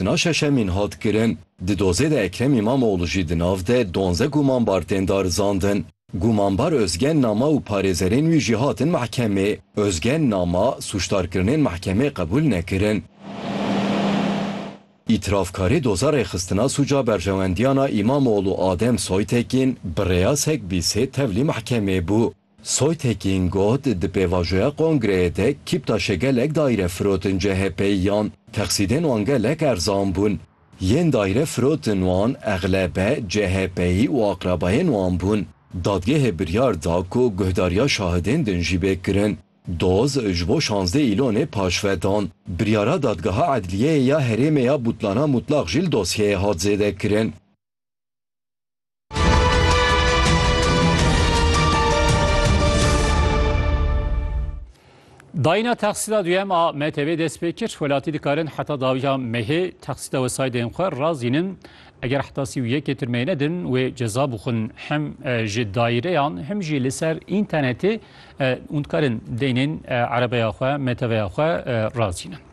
Dina şeşemîn hat kirin. Di dozê de Ekrem Îmamoglû jî di nav de donze gumanbar tên darizandin. Gumanbar Ozgen Nama û parêzerên wî jî hatin mehkemê. Ozgen Nama, sûcdarkirinên mehkemê qebûl nekirin. Îtirafkarê doza rêxistina sûca berjewendiyana Îmamoglû Adem Soytekîn bi rêya Segbîsê tevlî mehkemê bû. Soytekin got, Di pêvajoya kongreyê de Kîptaşê gelek daîre firotin CHP'yiyan, texsîdên wan gelek erzan bûn. Yên daîre firotin wan exlebe CHP'yî û aqrabayên wan bûn. Dadgehê biryar da ku guhdariya şahidên din jî bê kirin. Doz ji bo şazdeh îlonê paşve dan. Biryara Dadgeha Edliyeyê ya Herêmê ya Bûtlana Mûtlaq jî li dosyeyê hat zêdekirin. Dayîna texsîda duyem a MTV dest pê kir, welatî dikarin heta dawiya mehê texsîda wesaydên xwe razînin. Eger heta sî û yekê tirmeyê nedin wê ceza bixwin hem e, ji daîreyan hem jî li ser înternetê e, û dikarin deynên e, erebeya xwe, MTVya xwe e, razînin.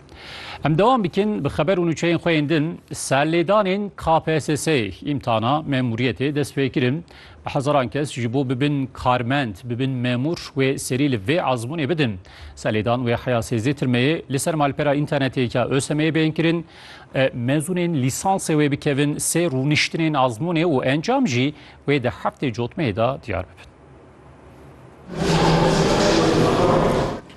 Em dewam bikin bi xeber û nûçeyên xwe yên din. Serlêdanên KPSS'ê îmtihana memûriyetê dest pê kirin. Bi hezaran kes ji bo bibin karmend, bibin memûr wê serî li vê ezmûnê bidin. Serlêdan wê heya sêzdeh tirmeyê li ser malpera înternetê ya ÖSYM'ê bên kirin. Mezûnên lîsansê wê bikevin sê rûniştinên ezmûnê û encam jî wê di heftê cotmeyê de diyar bibin.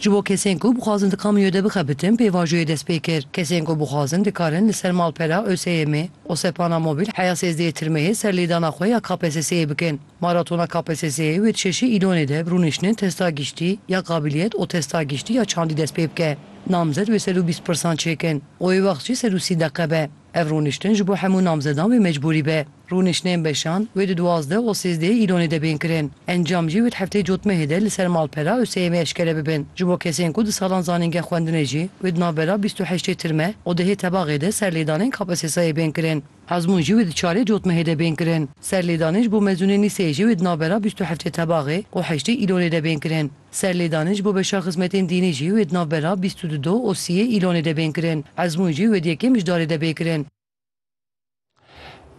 Ji bo kesên ku bixwazin di kamiyoyê de bixebitin pêvajoyê dest pê kir. Kesên ku bixwazin dikarin li ser malpera ÖSYM'ê, Osepana Mobil heya sêzdehê tirmeyê ser lêdana xwe ya KPSS'ê bikn. Maratona KPSS'ê wê di şeşê Îlonê de bi rûniştinên testa giştî ya kabîliyet û testa giştî ya çandî dest pê bike. Namzet wê sed û bîst pirsan çêkin û wê wext jî sed û sî deqe be. Ev rûniştin ji bo hemû namzedan wê mecbûrî be. Rûniştinên beşan wê di duwazdeh û sêzdehê Îlonê de bên kirin. Encam jî wê di hefteyê cotmehê de li ser malpera Useyemê eşkere bibin. Ji bo kesên ku du salan zanîngeha xwendinê jî wê di navbera bîst û heştê tirme û dehê tebaxê de serlêdanên KPSS'ê bên kirin. Ezmûn jî wê di çarê cotmehê de bên kirin. Serlêdanên ji bo mezûnên lîseyê jî wê di navbera bîst û heftê tebaxê û heştê Îlonê de bên kirin. Serlêdanên ji bo beşa xizmetên dînî jî wê di nav bera bîst û du do û sî yê Îlonê de bên kirin. Ezmûn jî wê di yekêm mijdarê de bê kirin.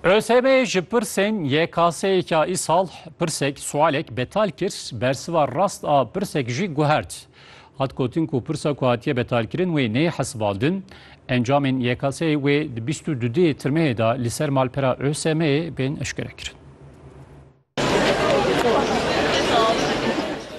ÖSYM ji pirsên YKS'yêka îsal pirsek, sualek, betal kir, bersiva rast a pirsek jî guhert. Hat gotin ku pirsa ku hatiye betalkirin wê neyê hesibandin. Encamên YKS'yê wê di bîst û du dê Tirmehê de li ser malpera ÖSYM'yê bên eşkerekirin.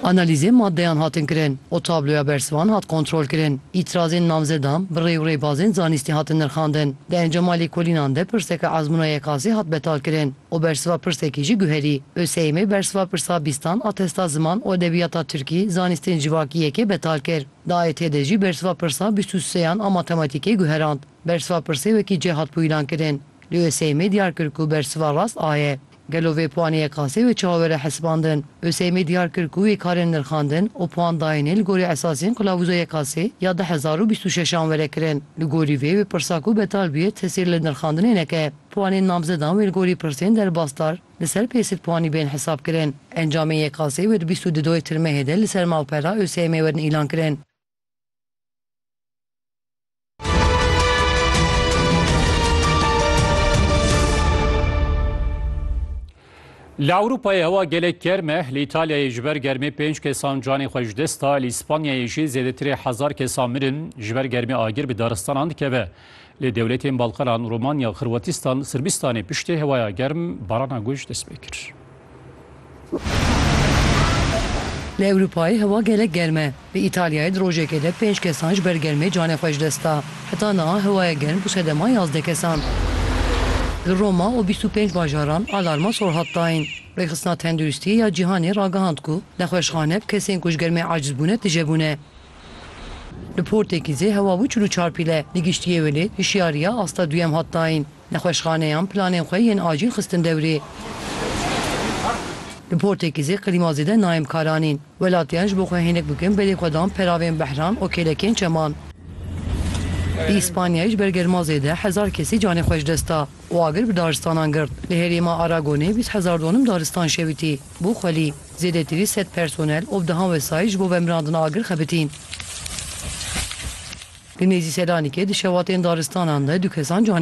Analîzên maddeyan hatin kirin û tabloya bersivan hat kontrolkirin. Îtirazên namzedan bi rê û rêbazên zanîstî hatin nirxandin. Di encama lêkolînan de pirseke ezmûna yekasî hat betalkirin û bersiva pirsekî jî guherî. ÖSYM'ê bersiva pirsa bîstan, atesta ziman û edebiyata tirkî, zanîstên civakî yekê betal kir. Di AYT'ê de jî bersiva pirsa bîst û seyan a matematîkê guherand. Bersiva pirsê wekî cê hat bûyîlankirin. Lê Oseymê diyar kir ku bersiva rast a ye. Gelo vê puanê ye qasê wê çawa were hesibandin? Oseymê diyar kir ku wê karên nirxandin û puan dayînê li gorî esasên qilavûza ye qasê ya du hezar û bîst û şeş an were kirin. Li gorî vê, wê pirsa ku betal bûye tesîr li nirxandinê neke. Puanên namzedan wê li gorî pirsên derbas dar li ser pê sed puanî bên hesabkirin. Encamên ye qasê wê di bîst û du doyê tirmehê de li ser malpera Oseymê werin îlankirin. Li Ewropayê hewa gelek germ e, li Îtalyayê ji ber germê pênc kesan canê xwe ji dest da, li Îspanyayê jî zêdetirê hezar kesan mirin, ji ber germê agir bi daristanan dikeve. Lê dewletên Balkanan, Romanya, Xirwatistan, Sirbistanê piştî hewaya germ barana guj dest pê kir. Li Ewropayê hewa gelek germ e. Li Îtalyayê di rojekê de pênc kesan ji ber germê canê xwe ji dest da. Heta niha hewaya germ bû sedema yazdeh kesan. Li Roma û bîst û pênc bajaran alarma sor hat dayîn. Rêxistina Tenduristî ya Cîhanê ragihand ku nexweşxane bi kesên ku ji germê aciz bûne tije bûne. Li Portekîzê hewa bû çil û çar pîle. Li giştî yê welê hişyariya asta duyem hat dayîn. Nexweşxaneyan planên xwe yên acîl xistin dewrê. Li Portekîzê klîma zêde nayên bikaranîn. Welatiyan ji bo xwe hênik bikin belê xwe dan peravên behran û kêlekên çeman. Li Îspanyayê ji ber germa zêde hezar kesî canê xwe ji dest da û agir bi daristanan girt. Li herêma Aragonê bîst hezar donim daristan şewitî bû xwelî. Zêdetî wî sed personel û bi dehan wesayît ji bo vemirandina agir xebitîn. Li nêzî Selanikê di şevatên daristanan de du kesan canê